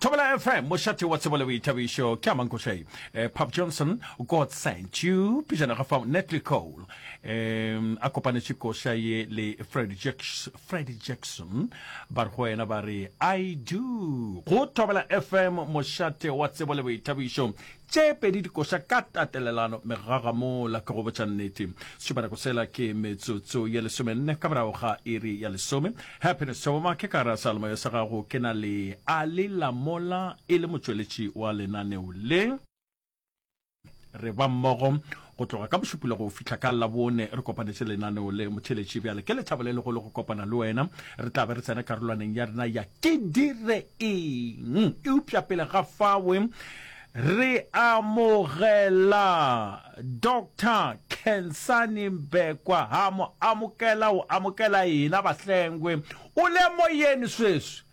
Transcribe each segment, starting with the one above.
Thobela FM mošate wa tsebo le boithabišo ke a mankošai um eh, pop johnson god sent you pejana ga fao netly cole um a kopanetše koša ye le freddy jackson, freddy jackson ba re go wena ba re i do go thobela fm mošate wa tsebo le boithabišo Tše pedi di koša ka tatelelano megaga mola ke go botša nnete. Setšobanako sela ke metsotso ye lesomenne ka morago ga iri ya lesome. Happiness Tšhoboma, ke ka ra sealemoya sa gago ke na le Ali Lamola e le motšweletši wa lenaneo le. Re ba mmogo Go tloga ka Bošupula go fihla ka Labone re kopanetše lenaneo le. Motheeletši, bjale ke lethabo le legolo go kopana le wena. Re tla be re tsena karolwaneng ya rena ya Ke Dire Eng? Eupša pele ga fao, re amogela Doctor Khensani Mbekwa. Ha mo amokela, o amokela ena, bahlengwe. O le moyeni sweswi?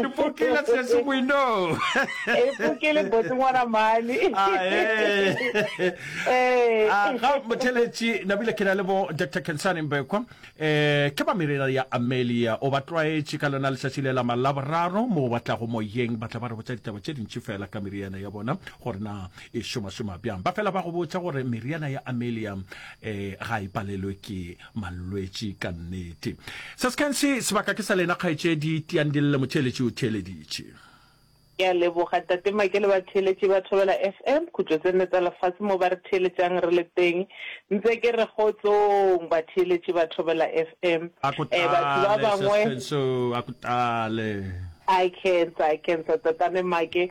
ipokele tshetso moinong ipokele botse ngwana mane ga motheletši nabile ke na le bo dr kensane mbekwa um eh, ke ba merera ya amelia o ba tlwaetše ka lona letšatši le la malaboraro mo ba tlago moyeng ba tla ba re botsa ditaba tše dintši fela ka meriana ya bona gore na e šomašoma bjang ba fela ba go botsa gore meriana ya amelia um ga e palelwe ke mallwetši ka nnete. Se se kantsi sebaka ke sa lena kgaetšedi tiang dille motheeletši o theeleditše. Ke a leboga Tate Make le batheeletši ba Thobela FM khutšo tse nne tsa lefase mo ba re theeletšang re le teng. Ntse ke re kgotsong batheeletši ba Thobela FM. A ko Eh, batho ba tlale bangwe. Sespenso, a ko tlale. I cancer, I cancer Tatane Make.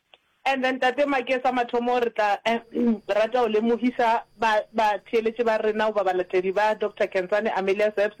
And then Tate Make sa mathomo re tla rata go lemohisa ba ba theeletše ba rena goba balatedi ba Doctor Khensani Amelia Sebs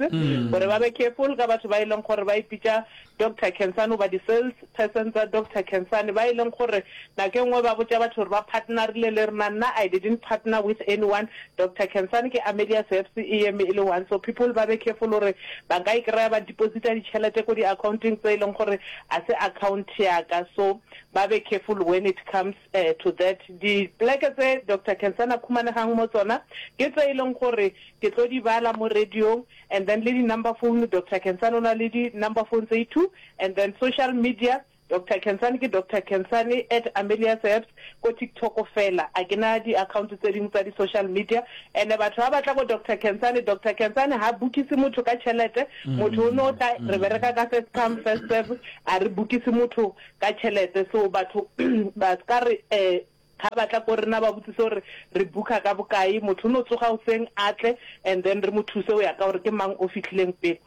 gore ba be careful ka batho ba e leng gore ba ipitša Doctor Khensani goba di sales person tsa Doctor Khensani ba e leng gore nako e nngwe ba botša batho gore ba partnerile le rena nna I didn't partner with anyone Doctor Khensani ke Amelia Sebs e eme e le one so people ba be careful gore ba nka e kry-a ba deposita ditšhelete ko di accounteng tse e leng gore a se account ya ka so Ba be careful when it comes to that. Dipleke tse Doctor Kensana a khumanegang mo tsona ke tse e leng gore ke tlo di bala mo radiong and then le di-number phone Doctor Kensane o na le di-number phone tse e two and then social media Doctor Kensane ke Doctor Kensane at Amelia's Herbs ko TikTok fela a ke na di-account tse dingwe tsa di-social media and-e batho ba batla bo Doctor Kensane, Doctor Kensane ga bookise motho ka tšhelete Motho o no tla, re bereka ka first come first serve, a re bukise motho ka tšhelete. So batho ba ska re um ga ba tla ko rena ba botsise gore re booker ka bokae. Motho o no tsoga goseng a tle and then re mo thuse go ya ka gore ke mang o fitlhileng pele.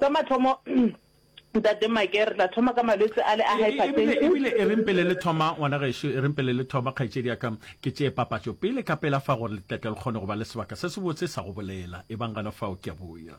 Sa mathomo Ntate Make re tla thoma ka malwetse ale a hypertension. Ebile e reng pele le thoma ngwana gešo, e reng pele le thoma kgaetšedi ya ka, ke tšee papatšo pele ka pela fa gore le tle tle le kgone go ba le sebaka se sebotse sa go bolela. Ebang gana fao, ke a boya.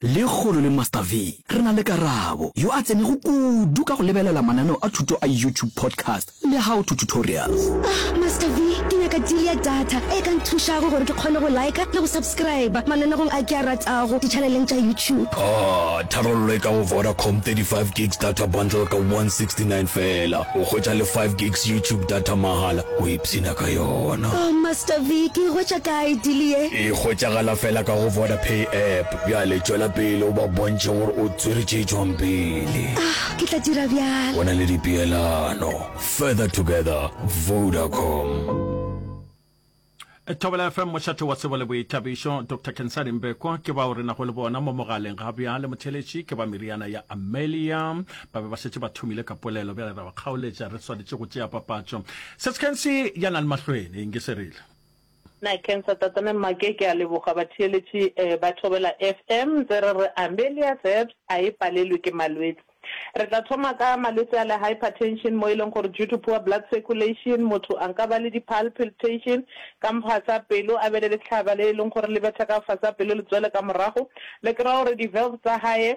Lekgolo le Master V, re na le Karabo, yo a tsenego kudu ka go lebelela mananeo a thuto a YouTube podcast le How to Tutorials. Ah, Master V, ke nyaka deal ya data e ka nthušago gore ke kgone go liker le go subscriber mananegong a ke a ratago di-channeleng tša YouTube. Ah, tharollo e ka go Vodacom, 35 gigs data bundle ka 169 feela, o hwetša le 5 gigs YouTube data mahala. Psina ka yona. Oh Master Vic e hwetša kae deal ye? E hwetšagala fela ka go Vodapay app. Bjale tšwela pele o ba bontšhe gore o tswere tše tšwang pele. Ah, ke tla dira bjalo. Go na le dipeelano. Further together, Vodacom. Thobela FM mošate wa sebo le boithabišo Doctor Kensani Mbekwa ke bao re nago le bona mo mogaleng ga bjale motheletši ke ba meriana ya Amelia ba be ba šetše ba thomile ka polelo bjale ra ba kgaoletša re swanetše go tšea papatšo seskensi ya na le mahlwene eng ke se rile na cancer tatane mmake ke a leboga batheeletši eh, ba thobela fm tse re re amelia seps a e palelwe ke malwetse re tla thoma ka malwetse a le hypertension mo e leng gore due to poor blood circulation motho a nka ba le di-pal piltation ka mfasa pelo a be le letlhaba le e leng gore le betha ka fasa pelo le tswele ka morago le kry-a gore di-valve tsa gae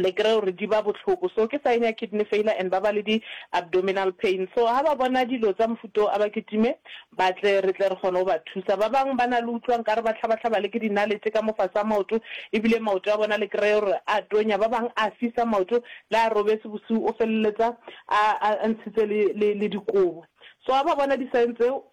Le kry-e gore di ba bohloko. So ke sign ya kidney failure and ba ba le di abdominal pain. So ha ba bona dilo tsa mofuta o a ba kitime ba tle re tle re kgone go ba thusa. Ba bang ba na le utlwa nkare ba hlaba-hlaba le ke dinaletše ka mofase a maoto ebile maoto a bona le kry-e gore a tonya. Ba bang a fisa maoto le a robetse bosiu o feleletsa a a ntshitse le le le dikobo. So ha ba bona di sign tseo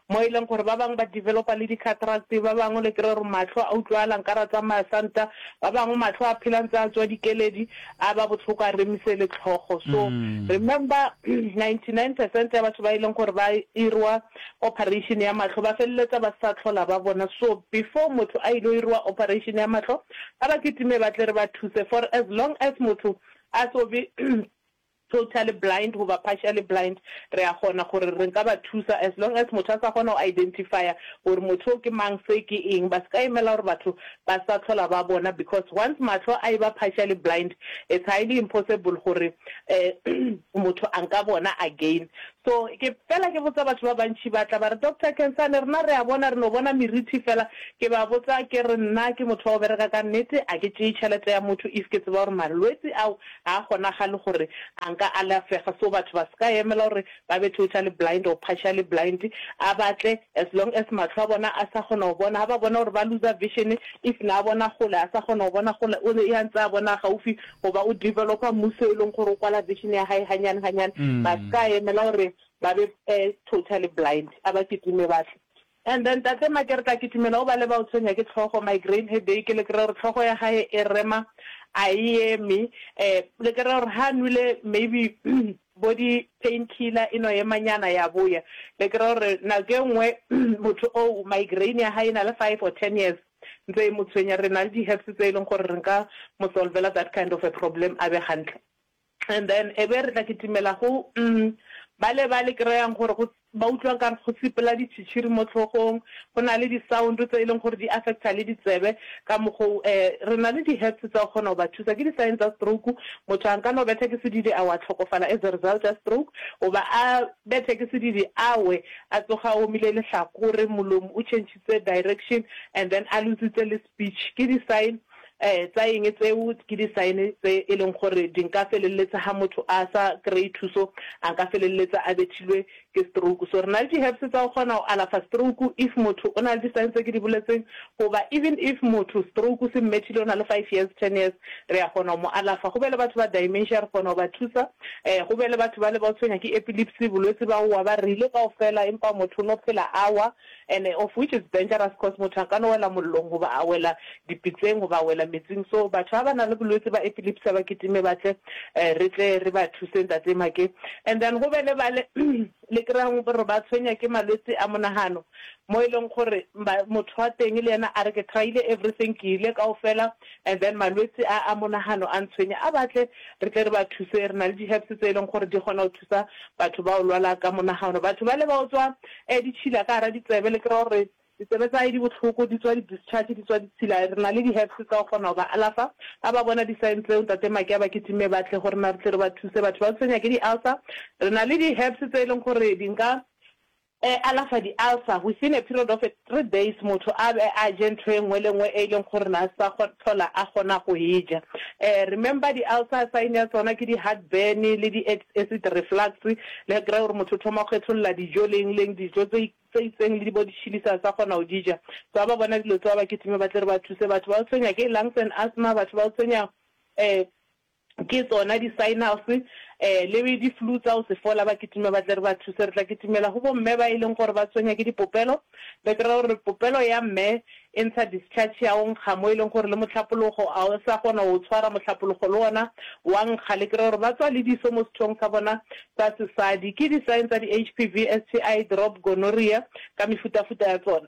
Mo e leng gore ba bangwe ba developa le di-cataracts, ba bangwe le kry-re mahlo a utlwagala nkare a tsamaya santa, ba bangwe mahlo a phela ntse a tswa dikeledi, a ba bohloko a remise le tlhogo. So remember ninety nine percent ya batho ba e leng gore ba irwa operation ya mahlo ba feleletsa ba sa tlhola ba bona. So before motho a ilo irwa operation ya mahlo ba ba kitime ba tle re ba thuse for as long as motho a so be totally blind goba partially blind, re a kgona gore re nka ba thusa as long as motho a sa kgona go identifya gore motho o ke mang se ke eng, ba se ka emela gore batho ba sa tlhola ba bona because once mahlo a eba partially blind it's highly impossible gore um motho a nka bona again. So ke fela ke botsa batho ba bantši ba tla ba re Doctor Khensani rena re a bona re no bona merithi fela, ke ba botsa ke re nna ke motho wa go bereka ka nnete a ke tšeye tšhelete ya motho if ke tseba gore malwetsi ao Ga a kgonagale gore a nka alafega so batho ba se ka emela gore ba be totally blind or partially blind. A batle as long as matlho a bona a sa kgona go bona, ga ba bona gore ba looser vision if na bona gole a sa kgona go bona gole o ne a ntse a bona gaufi goba o developer mmuso e leng gore o kwala vision ya gae ganyane ganyane. Ba se ka emela gore ba be totally blind a ba kitime ba tle. And then Tate ma kere ka kitimela o ba leba o tshwenya ke tlhogo, migraine headache, le kry-e gore tlhogo ya gae e rema a e eme, um le kry-e gore ha nwele maybe bo di pain killer e no ema nyana ya boya, le kry-e gore nako e nngwe motho o o migraine ya hae e na le five or ten years ntse e mo tshwenya, re na le di herbs tse e leng gore re nka mo solvela that kind of a problem a be gantle. And then ebe re tla kitimela go umm bale ba le kreyang gore go ba utlwa nkare go sepela ditšhitšhiri mo tlhogong, go na le di-sound tse e leng gore di affecta le ditsebe ka mokgo o eh re na le di-herbs tsa go kgona go ba thusa. Ke di-sign tsa stroke, motho a nka no bethwa ke sedidi a wa tlhokofala as a result ya stroke, goba a bethwe ke sedidi a we a tsoga a omile lehlakore, molomo o chentšhitse direction and then a lose-itse le speech. Ke di-sign um tsa eng tseo ke di sign tse e leng gore di nka felelletsa ha motho a sa kry thuso a nka felelletsa a bethilwe ke stroke so re na le di herbs tsa go kgona go alafa stroke if motho o na le di sign tse ke di boletseng goba even if motho stroke se mmethile o na le five years ten years re ya kgona go mo alafa go be le batho ba dimensia re kgona go ba thusa um go be le batho ba le ba tshwenya ke epilepsy bolwetse ba wa ba rile kaofela empa motho o no phela awa and of which is dangerous cos motho a ka no wela mollong goba a wela dipitseng goba a wela metsing so batho ba ba na le bolwetse ba epilepsy ba kitime ba tle re tle re ba thuse Ntate Make and then go be le ba le le kry-ang gore ba tshwenya ke malwetse a monagano mo e leng gore motho wa teng le yena a re ke try-ile everything ke ile kaofela and then malwetse a a monagano a ntshwenya a batle re tle re ba thuse re na le di-herbs tse e leng gore di kgona thusa batho bao lwala ka monagano. Batho bale ba otswa eh ditšhila ka gara ditsebe le kry-a gore ditsebe tsa hae di bohloko di tswa di discharge di tswa ditshila. Re na le di herbs tsa go kgona go ba alafa ha ba bona di signs tseo ntate Make a ba kitime ba tle go rena re tle re ba thuse. Batho ba tshwenya ke di ulcer re na le di herbs tse e leng gore di nka E alafa di-ulcer within a period of a three days motho a be a je ntho e nngwe le nngwe e leng gore na sa hlola a kgona go e ja. Remember di-ulcer sign ya tsona ke di-heartburn le di-acid reflux le kry-a gore motho o thoma go kgetholola dijo le eng le eng dijo tse tse itseng le di bo di-chilli sa sa kgona go di ja. So ha ba bona dilo tseo ba kitime ba tle re ba thuse batho ba tshwenya ke lungs and asthma batho ba tshwenya Ke tsona di-signals eh, le di-flue tsa go se fola, ba kitima ba tle re ba thuse. Re tla kitimela go bomme ba e leng gore ba tshwenya ke dipopelo. Petro o re, Popelo ya mme e ntsha discharge ya o nkga, mo e leng gore le mohlapologo a o sa kgona go o tshwara, mohlapologo le ona wa nkga. Le kry-e gore ba tswa le diso mo sethong sa bona sa sesadi. Ke di-sign tsa di-HPV, STI, drop, gonorrhea ka mefutafuta ya tsona.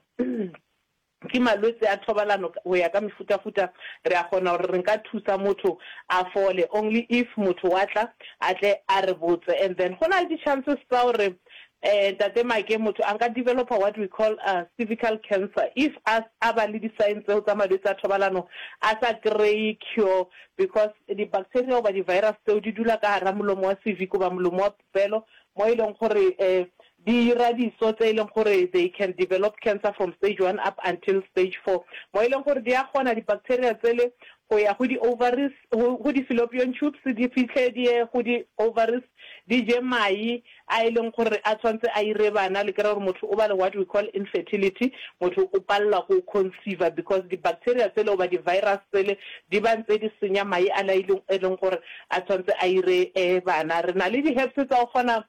Ke malwetse a thobalano go ya ka mefutafuta. Re a kgona gore re nka thusa motho a fole only if motho wa tla a tle a re botse and then go na le di chances tsa gore um Ntate Make motho a nka developer what we call a cervical cancer if a a ba le di sign tseo tsa malwetse a thobalano a sa kry-e cure because di bacteria goba di virus tseo di dula ka gara molomo wa cervic goba molomo wa bofelo mo e leng gore di ira diso tse e leng gore they can develop cancer from stage one up until stage four mo e leng gore di a kgona di-bacteria tsele go ya go di-ovaries, go di-fallopian tubes di fitlhe di ye go di-ovaries di je mai a e leng gore a tshwanetse a ire bana. Le kry-a gore motho o ba le what we call infertility, motho o palela ko conceiver because di-bacteria tsele goba di-virus tsele di ba ntse di senya mai a le a e leng gore a tshwanetse a ire bana. Re na le di-herbs tsa go kgona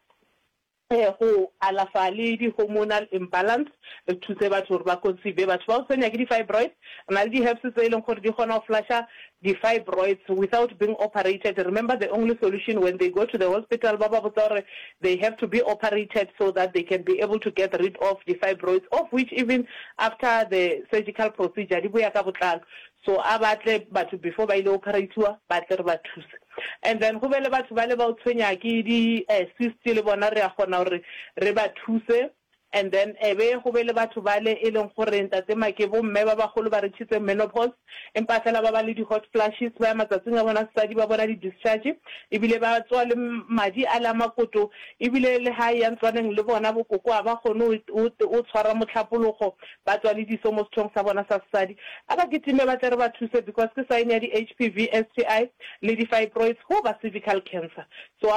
go alafa le di-hormonal imbalance, re thuse batho gore ba conceive. Batho ba go tshwenya ke di-fibroid, re na le di-herbs tse e leng gore di kgona go flusher di-fibroids without being operated. Remember the only solution when they go to the hospital ba ba botsa gore they have to be operated so that they can be able to get rid of di-fibroids of which even after the surgical procedure di boya ka botlalo. So a ba tle batho before ba ile operathiwa ba tle re ba thuse. And then go be le batho bale bao tshwenya ke di cyst le bona re a kgona gore re ba thuse. And then e be go be le batho bale e leng gore ntate ma ke bo mme ba bagolo ba reachitse menopause empa fela ba ba le di hot flashes ba ya matsatsing a bona sesadi ba bona di discharge ebile ba tswa le madi ale a makoto ebile le ha ya ntlwaneng le bona bo koko ha ba kgone o tshwara mohlapologo Ba tswa le diso mo sethong sa bona sa sesadi. A ba kitime ba tle re ba thuse because ke sign ya di HPV, STI, le di fibroids hoo ba cervical cancer. So a.